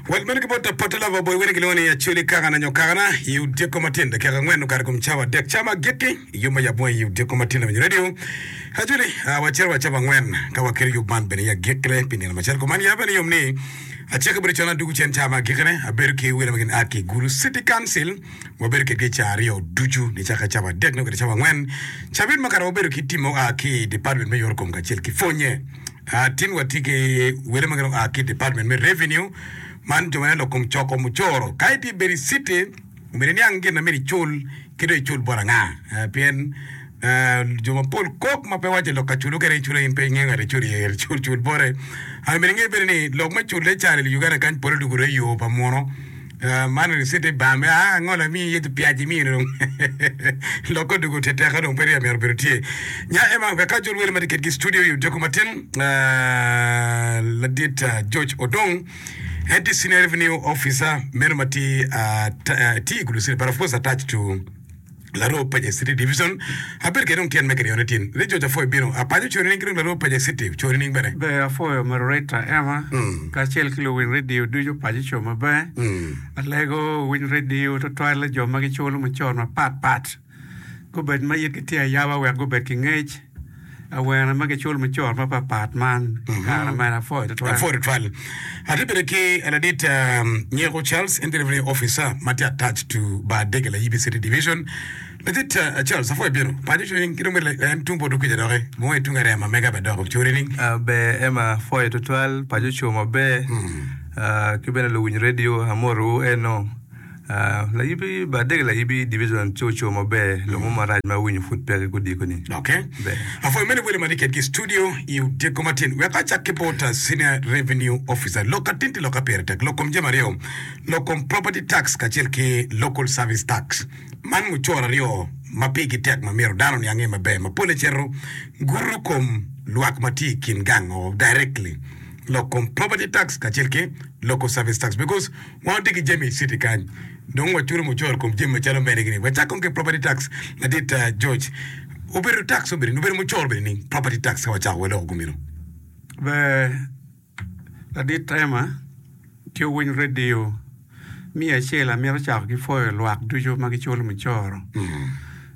Wat meno ki bot apote lava oboyo wene gilwongo ni Acholi Kakana nyo Kakana i odyeko matin dakika angwen okato i kom cawa adek. Cawa agikki i yub ma yab mo i odyeko matin lawenyo redio Acholi a wacito wa cawa angwen ka waketo yub man bene i agikkine pi nino macalo kuman. Yabbe niyom ni acel kabedo con adwogo cen cawa ma agikkine abedo ki welo ma gin a ki Gulu City Council wabedo kedgi cawa aryo ducu nicakke cawa adek nongo kede cawa angwen cabit makato wabedo ki tim ma oa ki i Department me Yorokom kacel ki Pwonye. Tin watye ki wele ma gidong oa ki i Department me Revenue, man jo ma nen lok kom coko mucoro. Ka itye bedo i citi, omyero iniang gin ma myero icul ki dong icul bot anga. Ah, Pien ah, jo mapol kok ma pe waco lok ka culo kene icula in pe ingeyo ngat iculo iye, myero icul cul bote. Ah, Myero inge bene ni lok me culle ca i Uganda kany pole dong gurye i yo pa muno. Man ricit ni bar me aa angol amiyi iye dhi piaci imiyo ni dong lokke odoko ote teka dong peya myero obedo tye nya ema wek ka jo lwela matye kedgi i studio i odeko matin ladit George Odong en tye senior revenue officer meno matye tye i gulu city but of course attached to Laroo Paje City Division, Abedo kede dong tyen me kiriyone tin. Lee George Afoyo bino. Apajo cori nining ki dong Laroo Paje City cori nining bene? Ber Afoyo, Marurita Emma, kacel ki luwiny redio ducu paco co maber. Alego winy redio twatwalle jo ma giculo mucoro mapat pat. Gubed ma yitgi tye ayaba wek gubed ki ngec. Awene ma kiculo me cot mapatpat man i kare ma en apwoyo tutwal. Apwoyo tutwal. Atye bene ki ladit um, Nyeko Charles, en delivery officer ma tye attached to Bar Dege Layibi City Division. Ladit uh, Charles, apwoyo bino. Paco cwiny ki dong bene la- en tung poto kwija doki. Mo i tung arema mega bene dok ocuri ni. Ah, ber Emma, apwoyo tutwal. Paco ocung maber. Ah, ki bene luwiny redio, amotowu eno. Layubbi ba adege layubbi division ci oco maber lomo marac ma awinyo pud peke kodiko ni. Okay. Ber. Apwoyo mene wele matye kedgi i studio i odyeko matin. Wek acak ki bot uh, Senior Revenue Officer. Lok ka tinti lok ka pire tek. Lok kom jami aryo. Lok kom Property Tax kacel ki Local Service Tax. Man mucoro aryo ma pigi tek ma myero dano ni ange maber ma pole cito guto kom lwak ma tye i kin gang o directly. Lok kom Property Tax kacel ki Local Service Tax because Wan watye ki jami i citi kany, dong waculo mucoro kom jami macalo mene gini. Wacak kong ki property tax madit uh, George. Obedo tax obedo ni, obedo mucoro bene ni, property tax ka wacako waloko gumeno. Ber ladit Rema ki owiny radio miyo acel amito cako ki pwoyo lwak ducu ma giculo mucoro.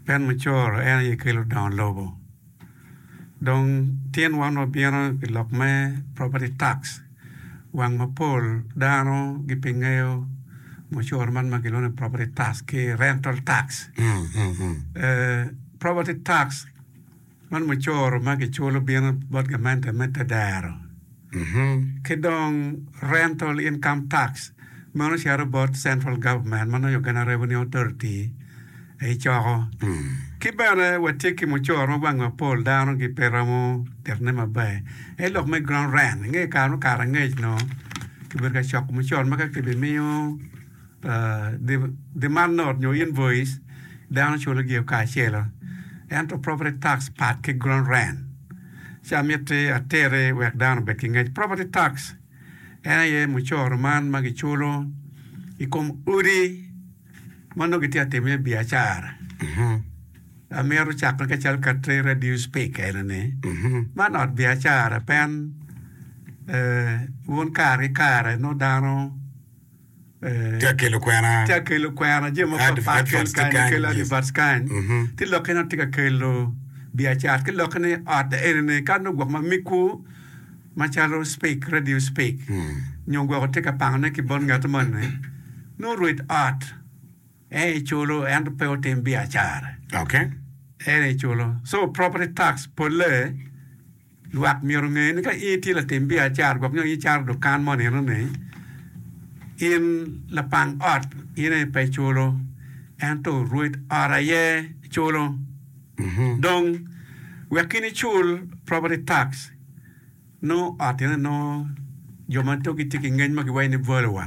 Pien mucoro en aye kelo dongo lobo. Dong tin wan wabino i lok me property tax, wang mapol dano gipe ngeyo mucoro man ma gilwongo ni property tax ki rental tax. Property tax man mucoro ma kiculo bino bot gamente me te dero. ki dong Rental Income Tax, meno cito bot Central Government, ma nongo Uganda Revenue Authority aye coko. Ki bene watye ki mucoro ma wange mapol dano gi pe romo titone maber, aye lok me Ground Rent, inge kare mukato angec nongo kibedo ka coko mucoro magi ka kibimiyo. Demand note nyo invoice dano culo gio kacelo ento property tax pat ki ground rent ci amiti ateri wek dano obed ki ngec. Property tax en aye mucoro man ma giculo i kom odi ma nongo gitye ka timo iye biacara. Amito cako ka cal ka te radio speak ene ni man ot biacara pen wun kare ki kare nongo dano Tye ka kelo kwena. Tye ka kelo kwena jami mapatpat kelo kany kelo advert kany ki lokke dong tye ka kelo biacara ki lokke ni ot enini ka nongo gwok ma migwu macalo speak radio speak nyo gwok tye ka pangone ki bot ngat moni nongo rwed ot en aye culo ento pe otim biacara en aye culo so property tax polle Lwak myero onge ni ka in itye latim biacara gwok nyo in icaro dukan mo nino ni, in lapang ot in aye pe iculo ento rwed ot aye culo. Dong, wek in icul property tax, nongo ot eno nongo jo ma to gitye ki ngec ma giwaco ni Volowa.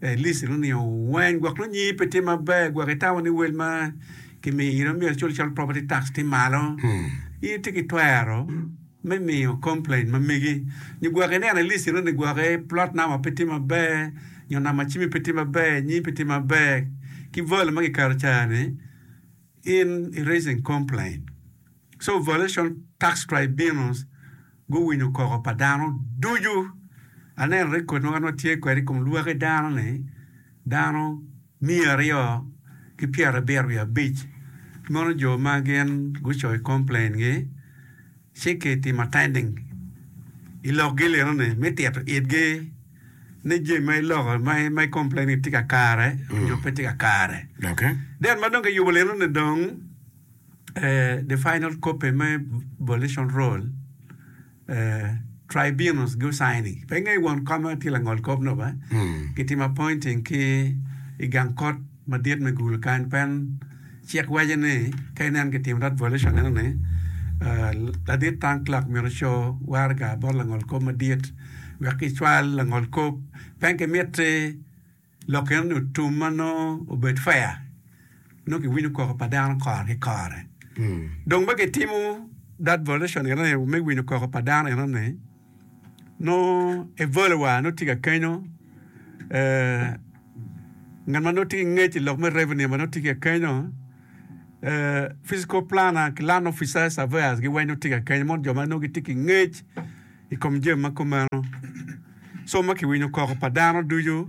Elice nonino weng gwok nongo nyingi pe tye maber gwok i tawa ni wel ma kimiyo iro myero icul calo property tax tye malo. In itye ki twero me miyo complain ma megi nyo gwok ineno Elice iro ni gwok plot number pe tye maber nyo number cimi pe tye maber, nyingi pe tye maber ki value ma kiketo ca ni. In i raising complaint so violation tax tribunals guwinyo koko pa dano ducu aneno record ma wan watye kwede ikom lwaki dano ni dano miya aryo ki pyera abiro wiye abic ki mono jo ma gin gucoyo complain gi ci kitimo tending i lokgi lino-ni me tito itgi ni jami ma iloko, ma, ma i complain ni tye ka kare nyo pe tye ka kare. Doki. Then ma dong kiyubo lino-ni dong, eh, the final copy me volition roll, eh, tribunals gu-sign-i. Pe ingeyo won koma tye langol kop nop, eh? Gitimo appointing ki i gang kot. madit me gulu kany pen cik waco ni ka inen ki tim rat volition neno ni ladit tank clerk myero co waraga bot langol kop madit wek ki cwal langol kop pen ki miti lok eno ni otum ma nongo obed fair nongo ki winyo koko pa dano kore ki kore dong ma ki timo rat volition eno ni me winyo koko pa dano eno ni Nongo Evole wa nongo tye ka kenyo, ngat ma nongo tye ki ngec i lok me revenue wa nongo tye ka kenyo, physical planner ki land officers, surveyors gi weng nongo tye ka kenyo, mono jo ma nongo gitye ki ngec i kom jami ma kumeno. Somo ma kiwinyo koko pa dano ducu.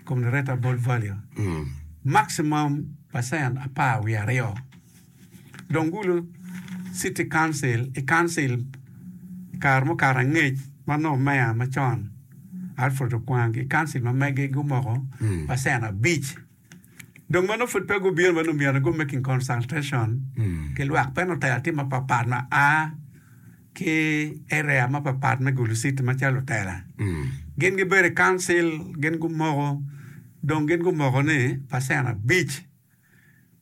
i kom lureta bot value maximum percent apar wiye aryo. Dong gulu City Council i Council i kare mukato angec ma nongo Mayor macon Alfred Okwang ki Council ma mege gumoko percent abic. Dong ma nongo pud pe gubino ma nongo myero nongo make in consultation ki lwak pe lutela tye mapatpat ma a ki area mapatpat me Gulu City macalo lutela. Gin gibedo i council, gin gumoko, dong gin gumoko ni pacen abic.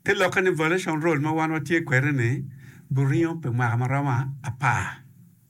Te lokke ni violation rule ma wan watye kwede ni buringo pi mwaka ma romo apar.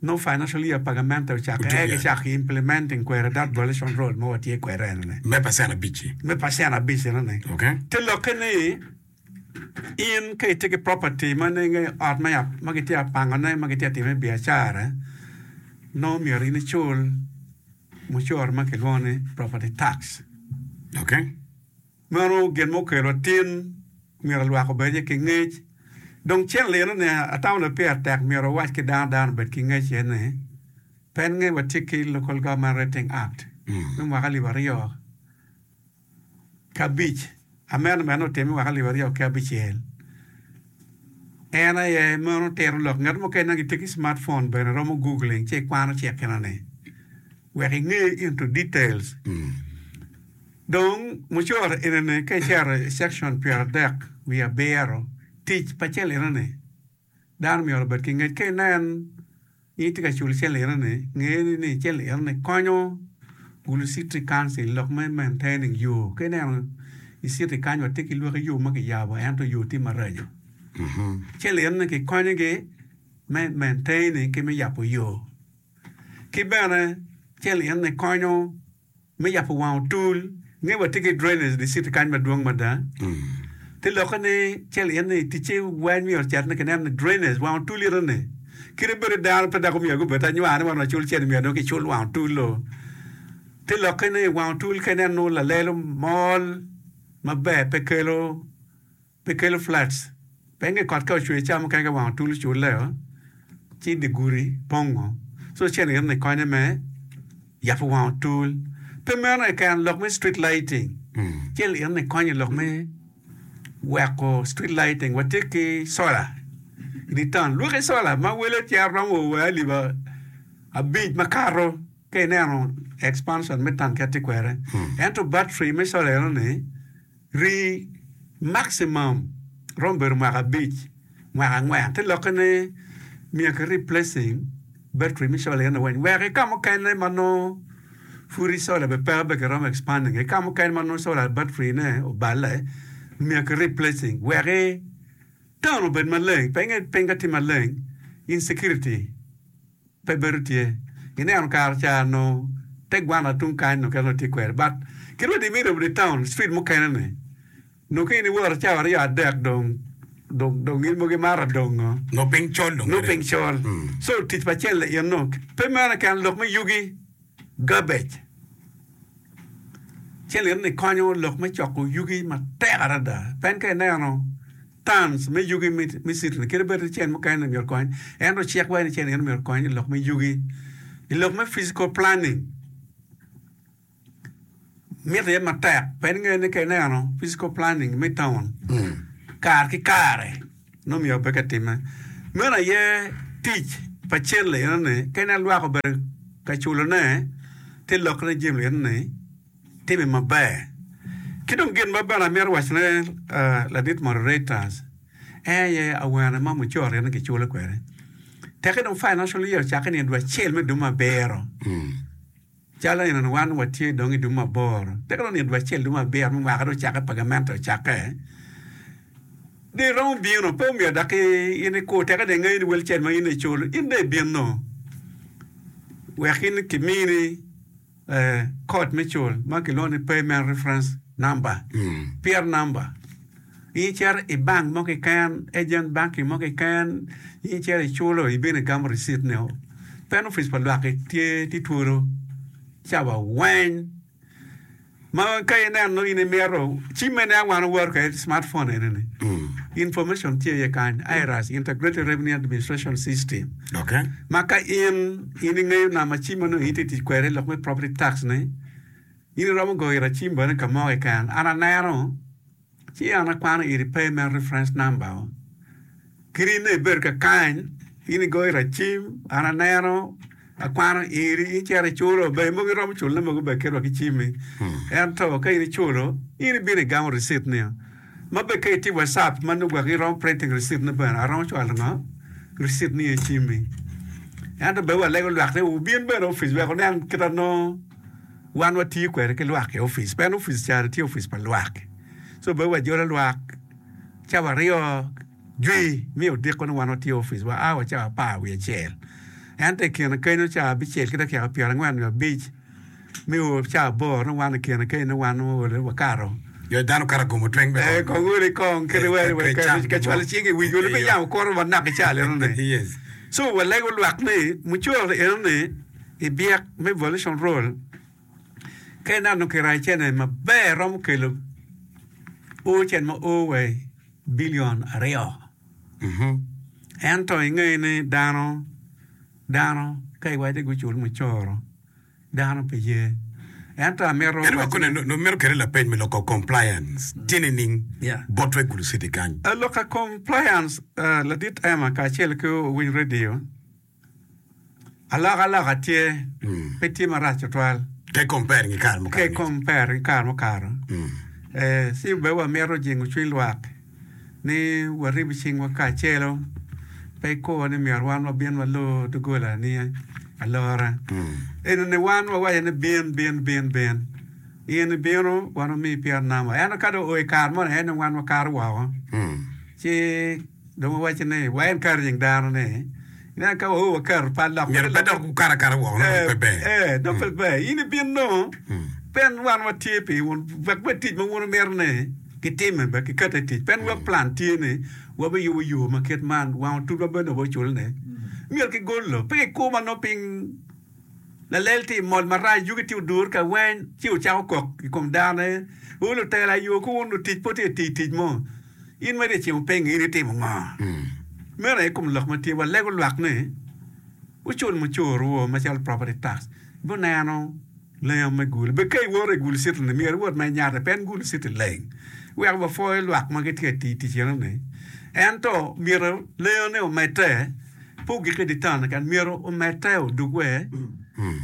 Nongo financial year pa gamente ocake Ocung eka ya. gicako ki implementing kweri that violation role ma watye kwede enoni. Me pacen abic-ci. Me pacen abic enoni. Ok. Te lokke ni in ka itye ki property ma nenge ot ma ya ma gitye ya pangone ma gitye ya time biacara nongo myero in icul mucoro ma kilwongo ni property tax. Ok. Meno gin ma okelo atin myero lwak obed iye ki ngec. Dong cen lino ni atamo ni peya tek myero wawac ki dano dano obed ki ngec iye ni, pennge watye ki Local Government Rating Act me mwaka alip aryo ki abic, amendment otimme mwaka alip aryo ki abicel. En aye meno tito lok ngat mukene ma gitye ki smart phone bene romo googling ci ikwano cik enoni. wek inge into details dong mucoro enene ka icero i section pyer adek wiye abiro tic pa cel enene dano myero obed ki ngec ka inen ni itye ka culo cel enene nge ni cel enene konyo gulu city council lok me maintaining yo ka ineno i city kany wa tye ki lwaki yo ma ki yabo ento yo tye maraco cel enene ki konyo gi me maintaining ki me yabo yo. Ki bene, celienne konyo me yabo wang otul. I nge watye ki drainage district kany madwong mada. Te lokke ni celienne i ticce weng myero ocit ni kineno ni drainage wang otul ite ni kite bedo dano pe dok omyero agi obed anywar ni wan wacul cene myero dong kicul wang otul-lo. Te lokke ni wang otul ka ineno lalelo mol maber pe kelo Pe kelo flats. Penge kot ka ocwer cawa mukene ka wang otul ocur leo ci dye gudi pongo so cene gire ni konye me yabo wang otul. Pe meno keken lok me street lighting cene gire ni konye lok me weko street lighting watye ki solar idye town lwaki solar ma wele cito romo wa wa alip abic makato ka ineno expansion me town kit tye kwede ento battery me solar eno ni Rii, Maximum, romo bedo mwaka abic, mwaka angwen te lokke ne miyo ki replacing battery me solar eno weng wek ki kamukene ma nongo pud i solar be peke be ki romo expanding ki kamukene ma nongo solar battery ne oballe miyo ki replacing wek i town obed maleng penge piny ka tye maleng insecurity Pe bedo tye. Ineno kare ca nongo te gwana tung kany nongo kit ma watye kwede but kit ma dimitti obedo i town street mukene ni nongo ka in iworo cawa aryo adek dong dong dong in mogo imato dongo. Nongo piny col dong. Nongo piny col. So tic pa cel ni in nongo pe meno keken lok me yugi, garbage. Cel in ni konyo lok me coko yugi matek adada. Pen ka ineno. Tans me yugi me citron kit bed ni cen mukene myero okony en ocek wai ni cen eni myero okony ilok me yugi ilok me physical planning miti iye matek pien ingeyo ni ka ineno physical planning me taun kare ki kare nongo myero obed ka time meno aye tic pa cen liyeno ni ka inen lwak obedo ka culone ti lok ne jami liyeno ni Timme maber. Ki dong gin ma bene amito wacone ladit moderators aye awene ma mucoro ni kiculo kwede. Teke dong financial year ocake ni dwe acel me dum abiro. Calo eno ni wan watye dong i dum aboro. Teke dong ni dwe acel dum abiro me mwaka dong ocake pagamente ocake. Dong iromo bino pe omyero dok in ikur teke dong ingeyo ni wel cen ma in icul in dong ibino wek in kimini Kod me cul ma kilwongo ni Payment Reference Number, PIR number. In icito i bank mo keken, agent banking mo keken, in icito iculo, ibino igamo receipt nio. Pen opic pa lwak-ki tye, tye twolo ca wa weng. Ma ka ineno in imito cim mene a wan wawato kwede smart phone eneni. Information tye iye kany, IRAS, Integrated Revenue Administration System. Okay. Ma ka in in ingeyo namba cim ma nongo iti tic kwede lok me property tax ni in iromo goyo ira cim bene ka mo keken an aneno Ci an akwano iri pay me reference number o, kit in dong ibedo ka kany, in igoyo racim, an aneno, akwano iri, in cito iculo, be mogo iromo culo ne mogo be kit wa ki cimi. Ento ka in iculo, in ibino igamo receipt ni o. Ma be ka itye WhatsApp ma nongo gwok iromo printing receipt ne bene, aromo cwalo ngo? Receipt ni e cimi. Ento be walego lwak ni wubin bene opic wek wunen kit anongo. Wan watiyo kwede ki lwak i opic pien opic cani tye opic pa lwak so bene wajolo lwak cawa aryo jwi mi odiko ni wan watiyo i opic wa a wa cawa apar wiye acel ento i kine kenyo cawa abicel ki dakika pyera angwen nyo abic mi o cawa aboro ni wan i kine kenyo ni wan owole wakato Jo dano kato gumo tweng me ee kong wele kong kite wele wele kete ka cwalo cing i wic wele me yamo koro wa naka i cal eno ni so walego lwak ni mucoro eno ni I byek me Volition Role, ka ineno kiraccene maber romo kelo oo cen ma oo wa i billion aryo. Ento ingeyo ni dano dano ka iwace gucul mucoro dano pe ye. Ento amito En waco kone dong mito kele lapeny me loko compliance tye nining Yeah. bot Regular City kany? Aloka compliance, ah, Ladit Emma kacel ki Owiny Radio, Alokaloka tye, pe tye marac tutwal. Ke compare ki kare mukato. Ke compare ki kare mukato. Ci bene wamito jingo cwiny lwak ni warib cingwa kacelo pe ko ni myero wan wabin walor doggola ni alora. Enini wan wawaco ni bin, bin, bin, bin. In ibino wan wamiyi pyerunama. Ento ka dong oo i kare moni aye dong wan wakato woko. Ci. Dong wawaco ni, Wa en kato nying dano ni. Ineno, ka waor wakato pat lok. Myero pe dok gukat akata woko, nongo pe ber. Ee, nongo pe ber. In ibin nongo, pien wan watye pi wun, wek bed tic ma wun wumito ni kitime bene kikate tic. Pien wa plan tye ni wabiyubo yo ma kit man, wang otul ma bene dong waculo ni myero kigol lo, pe kikumo ma nongo piny. Lalel tye i mol marac, yugi tye odur ka weny, ci wucako kok i kom dano-ni, Wun lutela ayo, ku wun lutic pud tye ka tiyo tic mo! In ma ryecci wupingo, in itimo ngo? Meno aye kom lok ma tye, walego lwak ni, Wucul mucuru-wu macalo property tax, guneno lenga me gulu. Bed ka iwoto i gulu citi-ni, myero iwot ma inyate, pien gulu citi leng. Wek wapwoyo lwak ma gitye ka tiyo tic enoni, ento myero lengane omedde. Pur gikke i dye taun kany myero omedde odug wer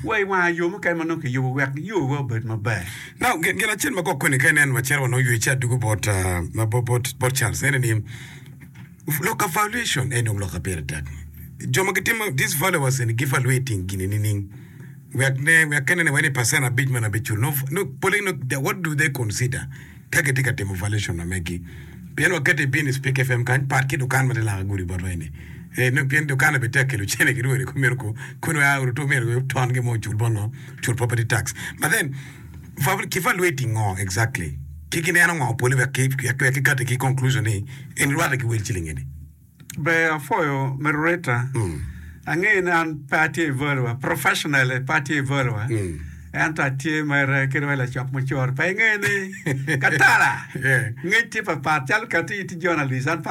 wa i wanga yo mukene ma nongo kiyubo wek yowa obed maber. Now, gin acel ma kok-koni ka inen maciro wa nongo ywe ci adugo bot, ah, bot, bot, bot Charles, ene ni, lok evaluation en dong lok ma pire tek. Jo ma gitimo these valuers eni gi evaluating gini nining? Wek ne, wek ka inene wa ni percent abic meno abic cul, no, no, pole, no, what do they consider? ka gitye ka timo valuation ma megi. Pien wakette ibin i Speke FM kany, pat ki dukan ma tye langa gudi botwa eni. Ee, nongo pien dukanna bene tek kelo cene ki rwodi kome ko, koni wa uru to myero wek ton gin mo ocul bot ngo? Ocul property tax. But then, va, ki valuating ngo exactly? Ki gineno ngo pole wek ki, wek ki kati ki conclusion ni eni rwate ki wel ciling eni? Ber apwoyo Merurita. Angeyo ni an pe atye i voice wa, professionally pe atye i voice wa. Ento atye mere ki dong i lacok mucoro. Pe ingeyo ni katala Yeah. ngec tye papat calo kati itye journalist an pe